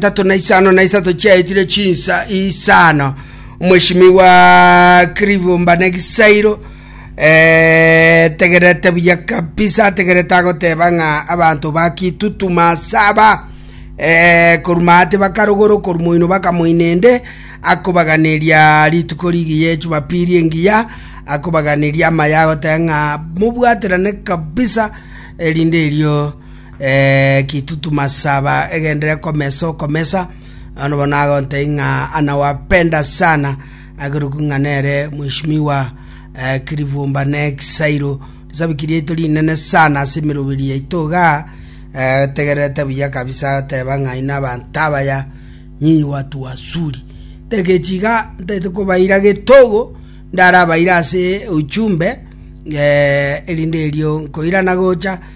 tatu na isano na isato chiaetire chinsa isano omweshimi wa kiribumba na egisairo eh, tegerete buya kabisa ategerete agoteba ng'a abanto bakitutuma saba eh, koruma ate bakarogoro koruma oino bakamoinende akobaganeria rituko rigiya echumapiri engiya akobaganeria amaya agoteba ng'a mobwaterane kabisa erinde erio eh, kitutuma saba egendere komesa okomesa ano bono agontei ng'a anawapenda sana ageruku ng'a nere mwishimiwa eh, kirivumba ne kisairo risabiki riaito rinene sana ase emeroberi yaito iga eh, tegererete buya kabisa teba ng'a ina abanto abaya nyinyi watu wasuri tegechiga ntete kobaira getogo ndarabaira ase uchumbe eh, erinde erio nkoirana gocha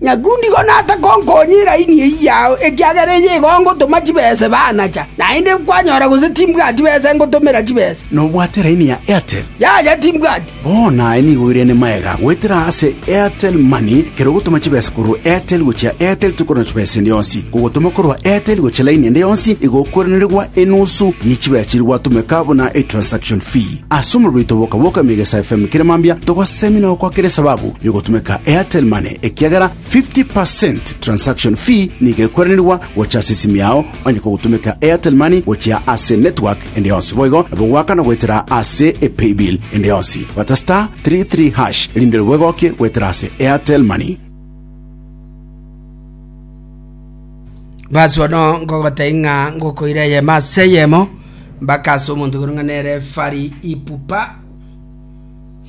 Nyakundigo naase gonkonyia eraini eyio yao, ekiagera eye igo ngotoma chibese banacha, naende kwanyora gose timbwati bese ngotomera chibese. Nobwate eraini ya Airtel? Yaya, timbwati. Bono aye nigo oirane magega goetera ase Airtel Money, kera ogotoma chibesa korwa Airtel gochia Airtel tikorora chibesa ende yonsi. Kogotoma korwa Airtel gochia laini ende yonsi igo okoiranerigwa enusu ye chibesa chiria gwatomeka buna etransaction fee. Ase omorero oito boka boka Emegesa FM kera mambia togosemi na gokwakera esababu yogotumeka Airtel Money ekiagera 50% transaction fee nigo ekweranirwa gocha ase esimi yao onye kogotumeka Airtel Money gochia ase network ende yonsi boigo nabo gwaka na goetera ase epaybill ende yonsi bata star 33 hash erinde ribwegokie goetera ase Airtel Money. Basi bono ngogotebi ng'a ngokoira eyemo ase eyemo mpaka ase omonto koreng'ana nere Fari Ipupa.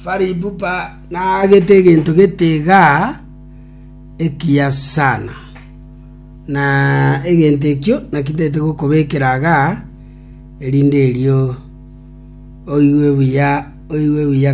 Fari Ipupa naagete egento gete iga ekiya sana, na egento ekio naki ntagete gokobekera iga erinde erio oigwe buya, oigwe buya.